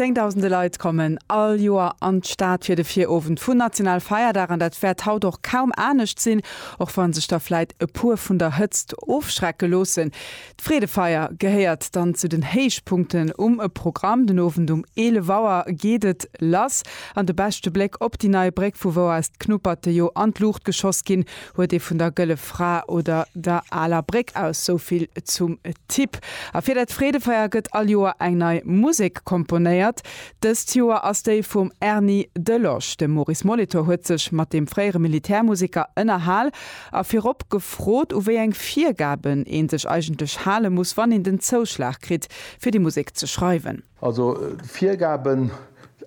Zéngdausende Leit kommen all Joer an d'Stad fir de Virowend vun Nationalfeierdag, an dat wäert haut och kaum anescht sinn, och wann sech der vläit e puer vun der Hëtzt ofschrecke loossen. D'Freedefeier gehéiert dann zu den Héichpunkten um Programm. Den Owend um 11 Auer geet et lass an de beschte Bléck op déi nei Bréck, vu wou aus d'Knuperte jo an d'Luucht geschoss ginn, Huet ee vun der Gëlle Fra oder der Aler Bréck aus. Souvill zum Tipp. A fir dat Freedefeier gëtt all Joer eng nei Musek komponéiert. Dëst Joer ass déi vum Erny de Losch. De Maurice Molitor huet sech mat deem fréiere Militärmuseker ënnerhal a virop gefrot, u wéi eng Virgaben ee sech eigentlech hale muss, wann een den Zouschlag kritt, fir déi Musek ze schreiwen. Also d'Virgaben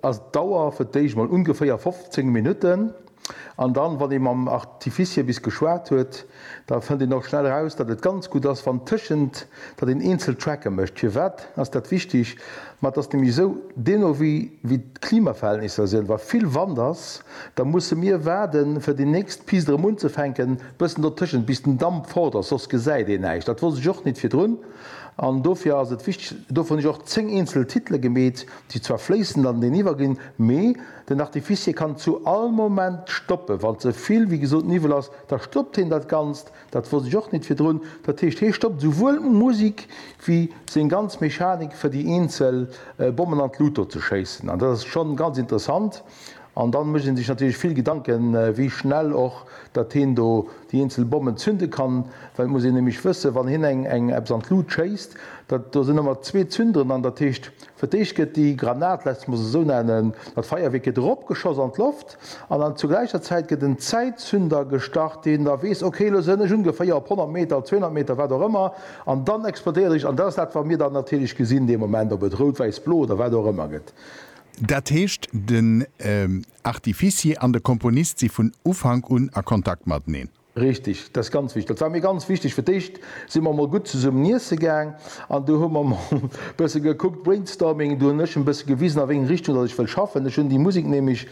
ass d'Dauer fir d'éischt mol ungeféier 15 Minutten an dann, wann ee mam Artificier bis geschwat huet, da fënnt een och schnell raus, datt et ganz gutt ass, wann tëschent, datt een eenzel Tracke mécht. Firwat ass dat wichteg? Ma et ass nämlech esou, dee no wéi d'Klimaverhältnisser sinn, wa vill Wand ass, da musse mir waarde fir déi nächst Pist erëm unzefänken, bëssen dotëschent, bis den Damp fort ass, soss gesäit een näischt. Dat wosst ech och nit virdrun. An dofir ass et wichteg, dovun hu ech och zéng eenzel Titele gemeet, déi zwar fléissend aneneniwwer ginn, mee den Artificier kann zu all Moment stoppen. Wa ze vill, wéi gesot, Niwwel ass, da stoppt hien dat Ganzt. Dat wosst ech och nit virdrun. Dat heescht, hie stoppt esouwuel d'Musik wéi seng ganz Mechanik, fir déi eenzel Bommen an d'Lut do ze schéissen. An dat ass schonn ganz interessant. An dann mécht een sech natierlech vill Gedanken, wéi schnell och datt heen do déi eenzel Bommen zünde kann, well et muss een nämlech wëssen, wann heen eng eng eppes an d'Lut schéisst, datt do sinn ëmmer zwee Zünderen an, datt heescht, fir d'éischt gëtt déi Granat, laasst mech se esou nennen, datt Feierwierk gëtt eropgeschoss an d'Loft an dann zur gläicher Zäit gëtt en Zäitzünder gestart, deen da weess, okay, elo sënn ech ungeféier op 100 Meter, op 200 Meter, wat och ëmmer, an dann explodéiert ech. An dat ass dat, wat mir dann natierlech gesinn dee Moment, ob et rout, wäiss, blo oder wat och ëmmer gëtt. Dat heescht, den Artificier an de Komponist si vun Ufank un a Kontakt mateneen? Richteg, dat ass ganz wichteg. Dat war mir ganz wichteg. Fir d'éischt si mer emol gutt zesummen iesse gaang an du hu mer emol e bësse gekuckt, Brainstorming. Du hunn ech e bësse gewisen, a wéi eng Richtung datt ech wëll schaffen. Ech hunn déi Musek nämlech,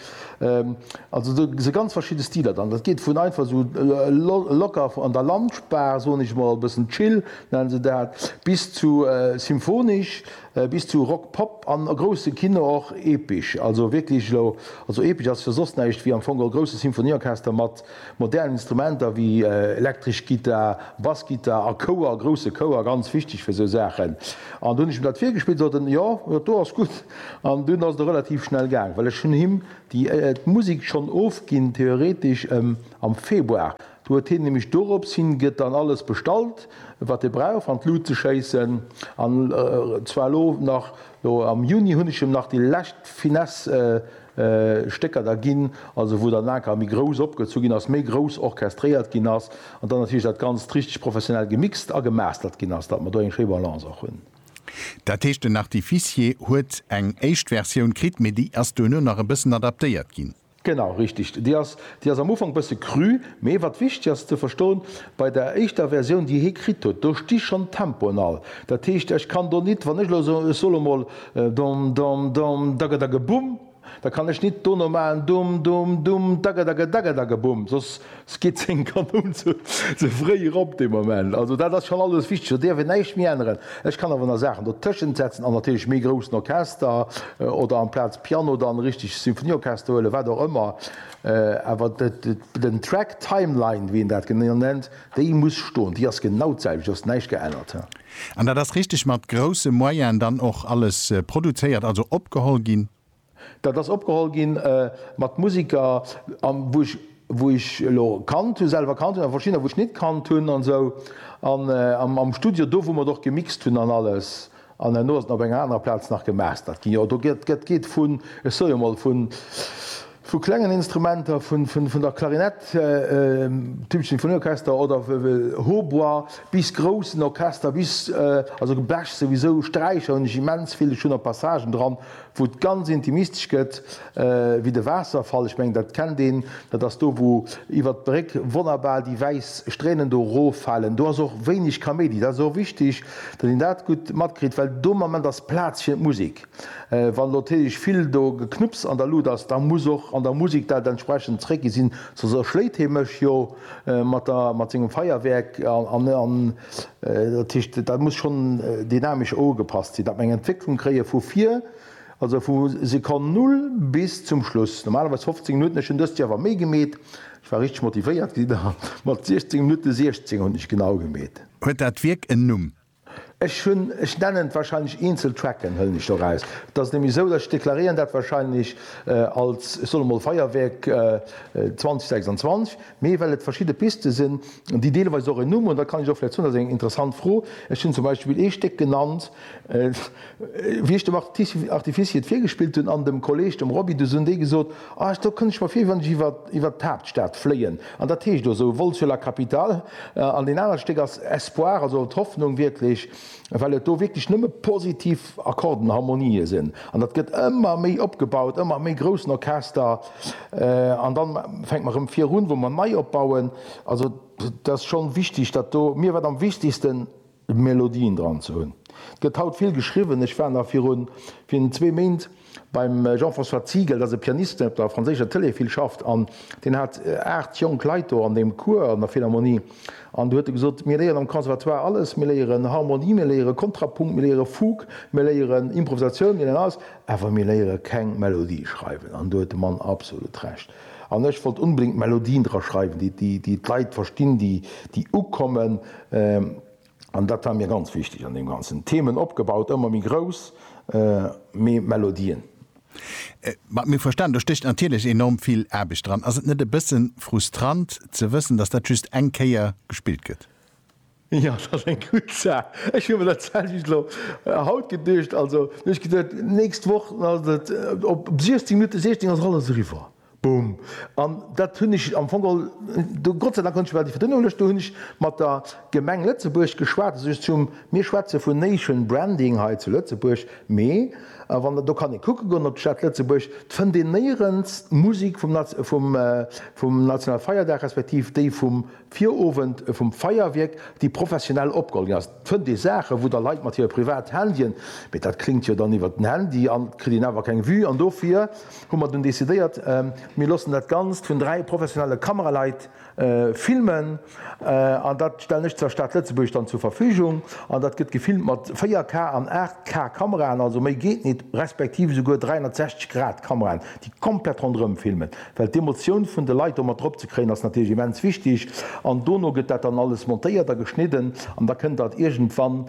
also do si ganz verschidde Stiler dran. Dat geet vun einfach esou locker an der Lounge-Bar, soen ech emol, e bëssen chill nennen se dat, bis zu symphonesch. bis zu Rock Pop an a grousse Kino och epesch, also wierklech elo, also epesch ass jo soss näischt wéi am Fong e grousse Symphonieorchester mat modernen Instrumenter wéi elektresch Gittar, Bassgittar a Chouer, grousse Chouer, ganz wichteg fir esou Saachen. An do hunn ech him dat virgespillt, sot en, jo, dat do ass gutt. An dunn ass et och relativ schnell gaang, well ech hunn him déi d'Musek schonn ofginn, theoretesch, am Februar. Do huet hien nämlech dorops hin gëtt dann alles bestallt wat e brauch an d'Lut ze schéissen an zwar elo nach elo am Juni hunn ech em nach déi lescht Finesse Stécker da ginn, also wou dann aker méi grouss opgezu ginn ass, méi grouss orchestréiert ginn ass an dann natierlech dat Ganzt richteg professionell gemixt a gemastert ginn ass, datt mer do eng schéi Balance och hunn. Dat heescht den Artificier huet eng éischt Versioun kritt, mee déi ass duerno nach e bëssen adaptéiert ginn? Genau, richteg. Déi ass, déi ass am Ufank bësse cru, mee wat wichteg ass ze verstoen, bei der éischter Versioun, déi hie kritt huet, do sti schonn d'Tempoen all. Dat heescht, ech kann do nit, wann ech elo soen, ech soll emol dom, dom, dom, dagedageboum, da kann ech nit dono maachen, dum, dum, dum, dagedagedagedageboum, soss Ski 10 Kanoun ze fréi erop dee Moment. Also dat ass schonn alles wichteg, do dierf een näischt méi änneren. Ech kann awer nach Saachen dotëschent setzen an natierlech méi groussen Orchester oder amplaz Piano dann e richtegt Symphonieorchester huelen, wat och ëmmer. Awer den Track Timeline, wéi een dat genau nennt, déi muss stoen, déi ass genau d'selwecht, do ass näischt geännert. An dat ass richteg mat grousse Moyene dann och alles produzéiert, also opgeholl ginn? Dat ass opgeholl gi mat Musiker, wou ech elo kannt hunn, selwer kannt hunn, a verschiddener, wou ech net kannt hunn an esou. An am Studio, do wou mer et och gemixt hunn an alles, an herno ass et op enger anerer Plaz nach gemastert ginn. Jo, do geet vun, ech soe jo emol, vu klengen Instrumenter, vun der Klarinett, Tube Sinfonieorchester oder Hautbois, bis groussen Orchester, bis, also Blech souwisou, Sträicher hunn ech immens vill, ech hunn och Passagen dran, wou et ganz intimistesch gëtt, wéi de Waasserfall, ech mengen dat kennt een, dat ass do wou iwwert d'Bréck wonnerbar déi wäiss Stränen do roffalen, do ass och wéineg Kaméidi, dat ass och wichteg, datt een dat gutt matkritt, well do am Ament ass Plaz fir d'Musek. Wann elo natierlech vill do Geknupps an der Lut ass, da muss och an der Musek dat entsprechend zréckginn sinn, soss erschléit hie mech jo. mat der mat sengem Feierwerk an an dat heescht dat muss schonn dynamesch ougepasst sinn, dat mer eng Entwécklung kréie vu vir, also vu Sekonn Null bis zum Schluss, normalerweis 15 Minutten. Ech hunn dëst Joer awer méi gemeet, ech war richteg motivéiert, mat 16 Minutte 16 hunn ech genau gemeet. Huet dat Wierk en Numm? Ech hunn, ech nennen wahrscheinlech eenzel Tracken, hëllen ech do raus. Et ass nämlech esou, dass ech deklaréieren dat wahrscheinlech als, ech soll emol Feuerwerk 2026, mee well et verschidde Piste sinn, déi deelweis och en Numm hunn, da kann ech och vläicht soen, dat ass eng interessant Fro, ech hunn zum Beispill ee Stéck genannt, Wéi ech dem Artificier et virgespillt hunn an dem Kolleg, dem Roby, du hunn déi gesot, ah do kënnt ech mer vir wéi wann ech iwwert d'Haaptstad fléien. An dat heescht do esou, Vol sur la capitale. An deen anert Stéck ass Espoir, also d'Hoffnung wierklech, well et do wierklech nëmme positiv Akkorden, Harmonië sinn. An dat gëtt ëmmer méi opgebaut, ëmmer méi groussen Orchester. An da fänke mer erëm virun, wou mer nei opbauen. Also et ass schonn wichteg, datt do mir wat am wichtegsten, Melodien dran ze hunn. Et gëtt haut vill geschriwwen. Ech war nach virun virun zwee Méint beim Jean-François Ziegel, dat ass e Pianist, deen op der franséischer Tëlee vill schafft an deen hat aacht jonk Leit do an deem Cours an der Philharmonie an do huet e gesot, mir léieren am Conservatoire alles, mir léieren Harmonie, mir léiere Kontrapunkt, mir léiere Fugue, mir léieren Improvisatioun, mir léieren alles, awer mir léiere keng Melodie schreiwen an do huet de Mann absolut Recht. An ech wollt unbedéngt Melodien dra schreiwen, déi d'Leit verstinn, déi ukommen. An dat war mir ganz wichteg an deem Ganzen. Themen opgebaut, ëmmer méi grouss, mee Melodien. Mat mir verstanen, do stécht natierlech enorm vill Aarbecht dran. Ass et net e bësse frustrant ze wëssen, datt dat just eng Kéier gespillt gëtt? Jo, dat ass eng gutt Saach. Ech hu mer dat selwecht elo haut geduecht. Also, elo hu ech geduecht, d'nächst Woch ass et op 16 Minutte 16 ass et alles eriwwer. Boom. An dat hunn ech am Fong all, do Gott sei Dank konnt ech iwwer déi Verdënnung luechten, do hunn ech mat der Gemeng Lëtzebuerg geschwat. Also, ech zum, mir schwätze vun Nation Branding hei zu Lëtzebuerg, mee wann der, do kann ee kucke goen op d'Stad Lëtzebuerg, d'fënnt een néierens d'Musek vum, vum, vum nationale Feierdag respektiv déi vum Virowend vum Feierwierk déi professionell opgeholl ginn ass, fënnt ee Saachen, wou da Leit mat hire privat Handyen, mee dat kléngt jo dann iwwert den Handy an et kritt een awer keng Vue an dofir hu mer dunn decidéiert, mir loossen dat Ganzt vun dräi professionelle Kameraleit filmen an dat stellen ech der Stad Lëtzebuerg dann zur Verfügung an dat gëtt gefilmt mat 4K an 8K Kameraen, also méi geet nit, respektiv esouguer 360 Grad Kameraen, déi komplett ronderëm filmen. Well d'Emotioun vun de Leit do mat drop ze kréien ass natierlech immens wichteg. An dono gëtt dat dann alles montéiert a geschnidden an da kënnt dat iergendwann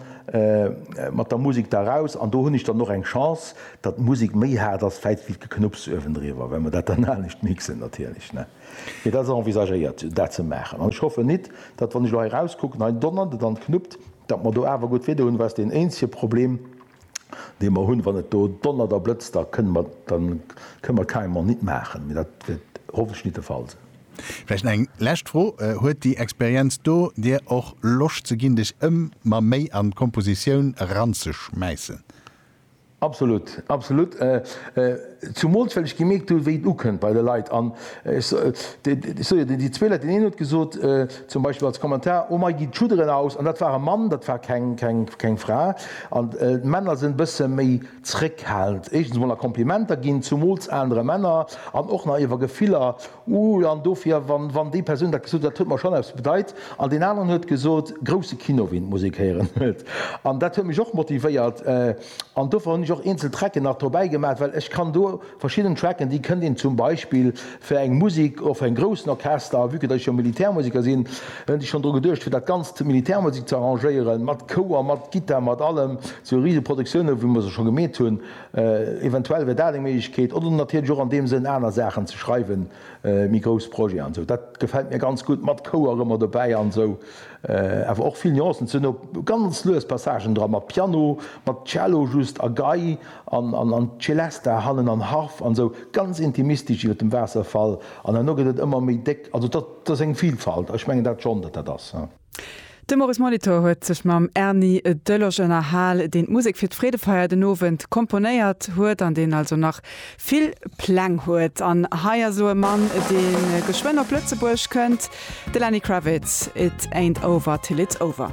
mat der Musek da eraus. An do hunn ech dann och eng Chance, datt d'Musek méi haart ass vläicht wéi d'Geknupps uewendriwwer, well mer dat dann anescht mixen natierlech, ne. Mee dat ass envisagéiert, dat ze maachen. An ech hoffen nit, datt wann ech elo hei erauskucken, hei donnert et an et knuppt, datt mer do awer gutt Weeder hunn, well ass deen eenzege Problem, dee mer hunn, wann et do donnert a blëtzt, da kënne mer, da kënne mer carrément nit maachen. Mee dat wäert hoffentlech nit de Fall sinn. Vläicht eng lescht Fro, Huet déi Experienz do dir och Loscht ze ginn, dech ëmmer méi an d'Kompositioun eranzeschmäissen? Absolut, absolut. Zumools well ech gemierkt hu wéi et ukënnt bei de Leit an ech sou jo déi zwee Leit, deen een huet gesot zum Beispill als Kommentar, oh mei gi d'Schudderen aus an dat war e Mann, dat war keng Fra an d'Männer sinn e bësse méi zréckhalend éischtens mol a Komplimenter ginn, zumools anere Männer an och nach iwwer Gefiller, uh an dofir wann déi Persoun dat gesot huet, dat huet mer schonn eppes bedeit an deen aneren huet gesot grousse Kinoween muss ee kéieren an dat huet mech och motivéiert. An dofir hunn ech och eenzel Tracken nach dobäi gemaach, well ech kann do verschidden Tracken, déi kënnt een zum Beispill fir eng Musek, och fir en groussen Orchester, a vue que datt ech jo Militärmuseker sinn, hunn ech schonn dru geduecht fir dat Ganzt, d'Militärmusek ze arrangéieren, mat Chouer, mat Gittar, mat allem, sou rise Produktioune wéi mer se scho gemeet hunn. Eventuell wär dat eng Méiglechkeet. Oder natierlech och an deem Sënn aner Saachen ze schreiwen, méi grouss Projeten an esou. Dat gefält mir ganz gutt, mat Chouer ëmmer dobäi an esou. Awer och vill Nuancen ze hunn, op ganz lues Passagen dra mat Piano, mat Cello just a Gei an Celesta hannen an Harf an sou ganz intimistesch iwwer dem Waasserfall an herno gëtt et ëmmer méi déck. Also dat ass eng Vilfalt a ech mengen dat schonn, datt dat ass. De Maurice Molitor huet sech mam Erny Deloge ënnerhal, deen d'Musek fir d'Freedefeier den Owend komponéiert huet an deen also nach vill Pläng huet an hei ass elo e Mann, dee geschwënn op Lëtzebuerg kënnt, de Lenny Kravitz, It ain't over till it's over.